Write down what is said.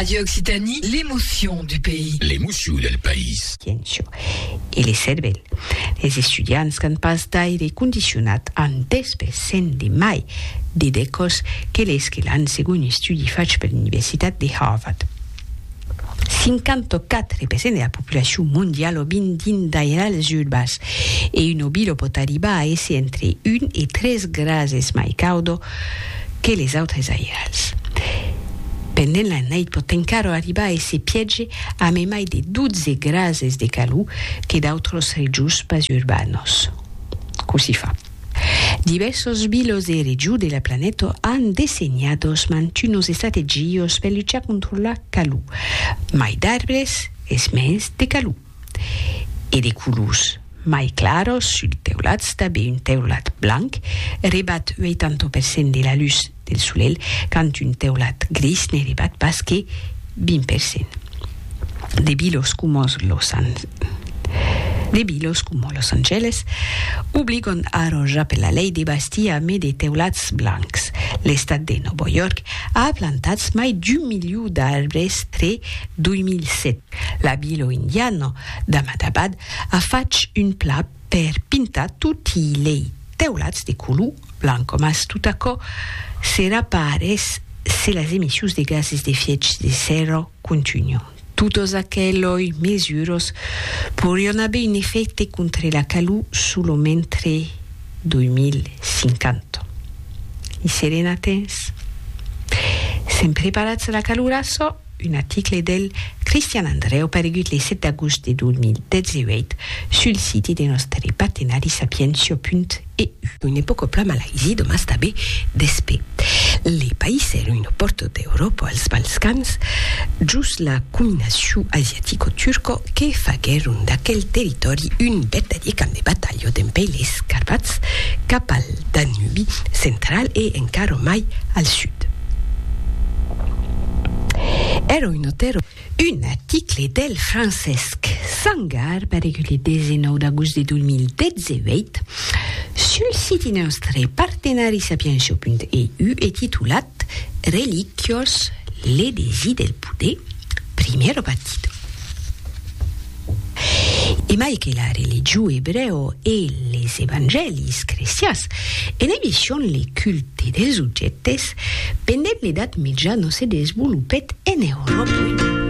Radio Occitanie, l'émotion du pays. L'emoció del país. Ciencio. E le cervèl. Es estudiants qu'an pas d'aire condicionat an 10 per cent de mai de decòs que les que l'an segon un estudi fach per l'Universitat de Harvard. 54 per cent de la populacion mondiala o vin dins d'airal es urbas, e un obi lo pòt arribar a èsser entre 1 e 3 grases mai caudo que les autres airals. Pendent la nait pòt encara arribar a èsser piège a memai de 12 grases de calor que d'autras regions pas urbanas. Cossí fa? Divèrsos bilos de region de la planeta an dessenhados mantunos estrategios per luchar contra la calor, mai d'arbres es mens de calor. E de colors mai claros suls teulats, tanben un teulat blanc rebat 80 per cent de la lutz del solelh quand un teulat gris ne rebat pas que 20 per cent. De bilos coma Los Angeles obligon ara ja per la lei de bastir a mai de teulats blancs. L'estat de Nòvo York a plantats mai d'un miliu d'arbres tre 2007. La vila indiana d'Ahmadabad a fach un plan per pintar toti lei teulats de color blanc, mas tot aquò serà pas res se las emissions de gases d'efièch de sèrra contunhan. Totas aqueloi mesuras podrián aver un efècte contra la calor solo mentre 2050. I serem a temps? Sèm preparats a la calor açò? Un article del Cristian Andreu paregut le 7 d'agost de 2018 sul siti de nòstre partenari sapientia.eu. Une pòca plama laisi domas tabé despé le país er uno pòrto d'Euròpa als Balcans, jos la cominaciu asiatico-turco que faguèron d'aquel territòri un vertadier camp de batalha. jo dempè les Carpats cap al Danubi central e encara mai al sud. Èra un auteur o. Un article del Francesc Sangar paregut le 19 d'agost de 2018 sul siti nòstre partenarisapienshop.eu e titulat. Eth reliquiós L'Elegi del Poder, primièr batitò. E mai que la religió ebrèo e les evangèlis crestians enevishion le culte dels objèctes, pendent l'Edat Mitja no se desvolopèt en Euròpa.